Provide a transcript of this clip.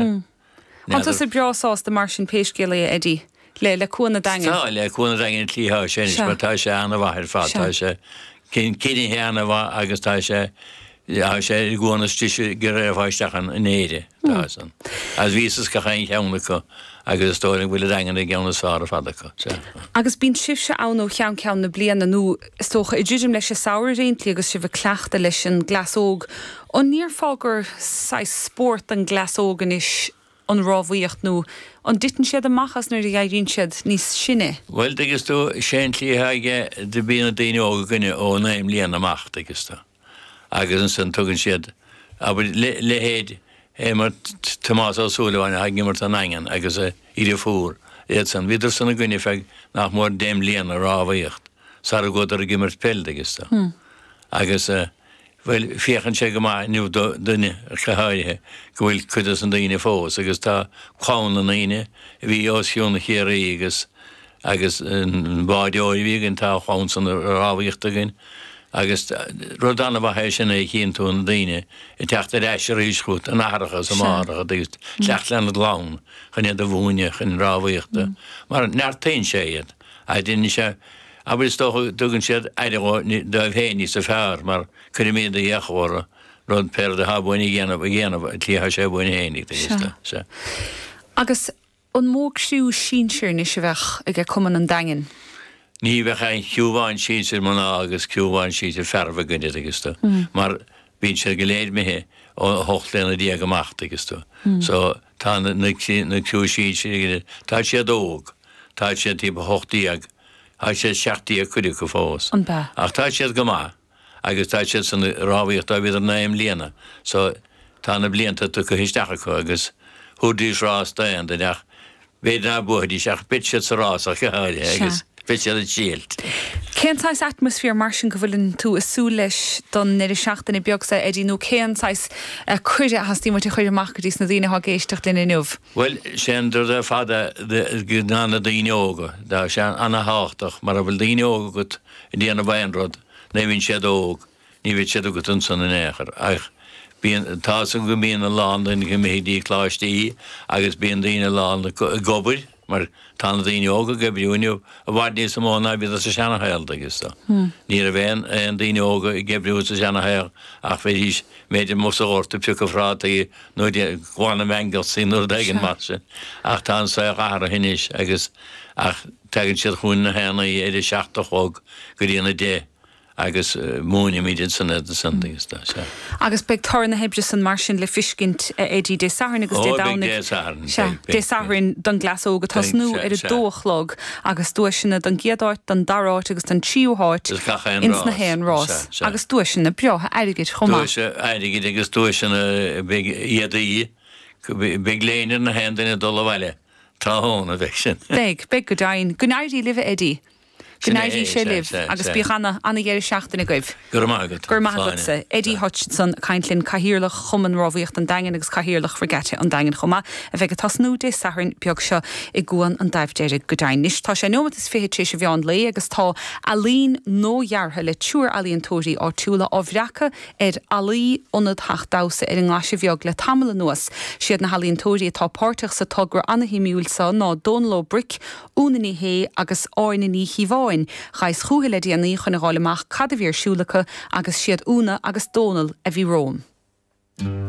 Tánn tusa breá sásta mar sin pé scéal é a Eddie, le, le Cuan an Daingin. Tá, le Cuan an Daingin an cliathán sin anois mar tá sé an-mhaith ar fad, tá sé coinnithe an-mhaith agus tá sé, tá sé ar an gcuan is deise go raghfá isteach ann in Éirinn, tá san. Agus bhíos is gach aon cheann acu agus is dóigh liom go bhfuil an Daingean ar an gceann is fearr ar fad acu. Agus bíonn sibhse ann ó cheann ceann na bliana nó? Is dócha, ag druidim leis an samhradh ar aon tslí agus sibh ag cleachtadh leis an gcleas óg, an ndéarfá gur saghas spórt don gcleas óg anois an rámhaíocht nó an dtiteann siad amach as nuair a éiríonn siad níos sine? Bhuel, dtuigeas tú, sé an tslí atá aige go mbíonn na daoine óga againne ó naoi mbliana amach, dtuigeas tú. agus ansan tugann siad, abair, leithéid, abair, Tomás Ó Súilleabháin atá ag imirt don Daingean agus a dheirfiúr, iad san. Bhíodar san i gcoinne feadh nach mór deich mbliana ag rámhaíocht sara gcuadar ag imirt peil dtuigeas tú. Agus, bhuel, féachann sé go maith inniu dúinne ach go háirithe go bhfuil cuid dos na daoine fós, agus tá clann na ndaoine a bhí os cionn Chiarraí agus agus an bádóir a bhí againn, tá a chlann san ag rámhaíocht againn agus rud an-mhaith é sin nuair a chíonn tú na daoine ag teacht ar ais arís chugat ina n-aithreacha is ina máithreacha ag teacht lena gclann chun iad a mhúineadh chun rámhaíochta mar neartaíonn sé iad agus déanann sé, abair, is dócha go dtugann siad aire dóibh féin níosa fearr mar cuirimid d'fhiacha orthu rud pé rud atá uainn a dhéanamh a dhéanamh ar an tslí atá sé uainn féin ag duine is dócha. Agus An mó criú sinsir anois a bheadh aige cumann an Daingin? Ní bheadh ach aon chriú amháin sinsir mná agus criú amháin sinsir fearaibh againn, a thuigeas tú, mar bíonn siad go léir imithe ó 18 bliana amach, tuigeas tú. So, tá na criú sinsir againne, tá siad óg, tá siad timpeall 18, tá siad 17 cuid acu fós, ach tá siad go maith. agus tá siad san ag rámhaíocht ó bhíodar naoi mbliana so tá na blianta tugtha isteach acu agus thabharfaidís rás d'aon duine ach b'fhéidir ná buafaidís ach beidh siad sa rás ach go háirithe Sea. agus beidh siad ag triailt. Cén saghas atmaisféar mar sin go bhfuil tú ag súil leis don ndeireadh seachtaine beag so Eddie nó cén saghas cuireadh a theastaíonn uait a chur amach go dtís na daoine atá ag éisteacht linn inniu? Bhuel, sé an rud ar fad ná na daoine óga, tá sé ana-thábhachtach mara bhfuil daoine óga agat, déanamh aon rud, nuair a bhíonn siad óg, ní bheidh siad agat ansan in aon chor. Ach bíonn, tá san go mbíonn a lán daoine imithe go dtí coláistí agus bíonn daoine lán ag obair, mar tá na daoine óga ag oibriú inniu i bhfad níosa mó ná a bhíodar sa seana shaol, dtuigeas tú. Ní raibh aon, aon daoine óga ag oibriú sa seana shaol ach bheidís, b'fhéidir, amuigh sa ghort ag piocadh phrátaí nó ag glanadh meaingealsaí nó rud éigin mar sin. Ach tá an saol athraithe ó shin anois agus, ach, Tagann siad chugainn haon oíche óna a seacht a chlog go dtína 10 agus múinimid ansin iad san agus tá sé. Agus beidh toradh na hoibre san mar sin le fiscint a Eddie Dé Sathairn agus Dé Domhnaigh. Ó beidh Dé Sathairn. Sea, Dé Sathairn don gcleas óg ag tosnú ar a dó a chlog agus duaiseanna don gcéad áit, don dara áit agus don tríú háit ins na haon rás agus duaiseanna breátha airgid chomh maith. Duaiseanna airgid agus duaiseanna beidh a Eddie, beidh léine ar na haon duine ag dul abhaile Tá ann, a bheidh sin. Beidh, beidh go deimhin. Go n-éirí libh, a Eddie. Go n-éirí sé libh agus bíodh ana, ana-dheireadh seachtaine agaibh. Go raibh maith agat, Áine. Go raibh maith agat, a Eddie Hutchinson, ag caint linn, Cathaoirleach Chumann Rámhaíochta an Daingin agus Cathaoirleach Regatta an Daingin chomh maith, a bheidh ag tosnú Dé Sathairn beag seo i gCuan an Daimh Dheirg, go deimhin. Anois, tá sé neomat is fiche tar éis a' mheán lae agus tá ealaín nuadheartha le triúr ealaíontóirí áitiúla á bhreacadh ar fhallaí Ionad Theach Damhsa ar an nGlaise Bheag le tamall anuas. Siad na healaíontóirí atá páirteach sa togra ana-shuimiúil seo ná Dónal Ó Bric, Úna Ní Shé agus Áine Ní Chíobháin. Ghaibheas chúthu le déanaí chun a fháil amach cad a bhí ar siúl acu agus siad Úna agus Dónal a bhí romham.